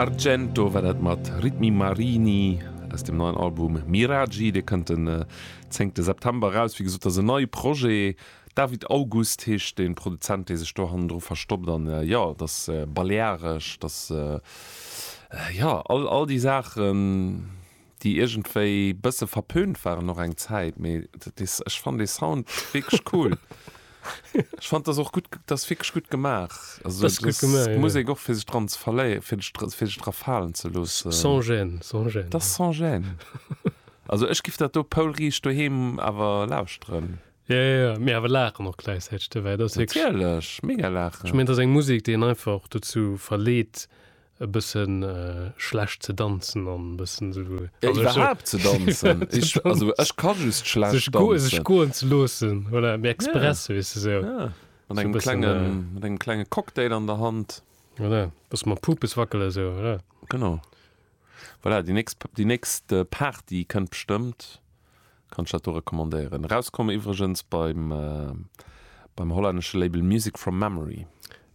Argento war dat mat Ritmi Marini aus dem neien Album Miraggi. Dee kënnt den zéngte September eraus. Wéi gesot, dat ass en neie Projet. David August heescht de Produzent, dee sech do hannendru verstoppt. An jo, et ass balearesch, et ass, jo, all déi Saachen. déi iergendwéi bësse verpönt waren och eng Zäit, mee dat is, ech fann dee Sound wierklech cool. Ech fannt dass och gutt, dass wierklech gutt gemaach, also dass d'Musek och fir sech dran ze verléieren, fir sech dra, fir sech dra falen ze loossen. Sans gêne, sans gêne. Dass sans gêne. Also ech giff dat do poulriicht doheem awer lauschteren. Ja, ja, ja, mee awer laachen och gläichzäiteg dobäi, dat ass wierklech. Natierlech, mega laachen. Ech mengen, et ass eng Musek, déi een einfach dozou verleet, e bëssen schlecht ze danzen an e bëssen esou. Jo, iwwerhaapt ze danzen. Ech, also ech ka just schlecht danzen. Sech goen, sech goen ze loossen, voilà, mee express, weess de, sou. Ja, mat engem klenge, mat engem klenge Cocktail an der Hand. Voilà, bësse mam Pupes wackele sou, voilà. Genau, voilà, déi nächst, déi nächst Party kënnt bestëmmt. Kann ech dat do recommandéieren. Erauskomm iwwregens beim beim hollännesche Label Music From Memory.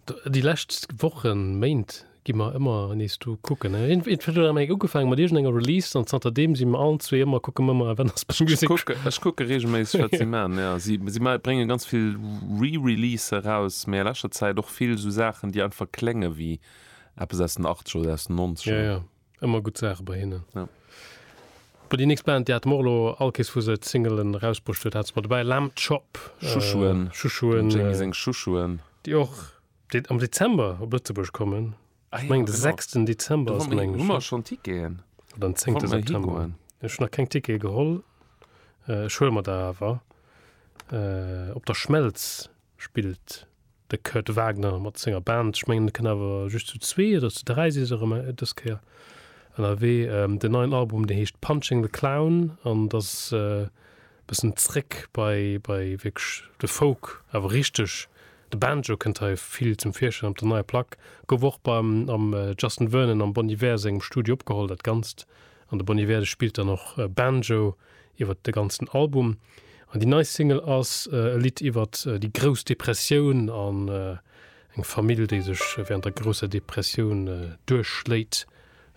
Déi lescht Wochen, Méint gi mer ëmmer nees do kucken. Et huet eng ugefaange mat iergend enger Release an zanter deem si mer allen zwee ëmmer, kucke mer mol, wann ass bei Music From Memory. Ech kucke reegelméisseg wat si maachen, jo. Si brénge ganz vill Re-Releasen eraus, mee a leschter Zäit och vill esou Saachen, déi einfach klénge wéi eppes aus den Achtzeger oder aus den Nonzeger. Ëmmer gutt Saache bei hinnen. Ja. Bon, déi nächst Band, déi hat mer och elo all kees vu se d'Singelen erausbruecht huet, hat se mer dobäi, Lamb Chop. Chouchouen. Äh, Chouchouen. Dem Jamie seng Chouchouen. Déi och dé am Dezember op Lëtzebuerg kommen. Ah, ja, Meng de genau. 6. Dezember Do ass, hu meng ech. mer schonn Ticketen. Oder den 10. Wollte mer September. higoen. Ech hunn nach keng Tickete geholl. Äh, ech huele mer der awer. Äh, op der Schmelz. spillt de Kurt Wagner mat senger Band. Ech mengen et kënnt awer just zu zwee oder zu dräi si se erëm dës Kéier ënnerwee. Den neien Album dee heescht Punching the Clown an et ass e bëssen zréck bei bei wierklech de Folk, awer richteg. De Banjo kënnt hei vill zum Virschäin op der neier Plack. Gouf och beim am Justin Vernon am Bon Iver sengem Studio opgeholl dat Ganzt an de Bon Iver de spillt dann och Banjo. iwwert de ganzen Album an déi nei Single ass e Lidd iwwert déi grouss Depressioun an eng Famill, déi sech während der grousser Depressioun duerchschléit,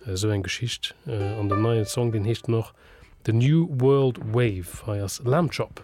esou eng Geschicht. An den neien Song, deen heescht dann och The New World Wave. Hei ass Lamb Chop.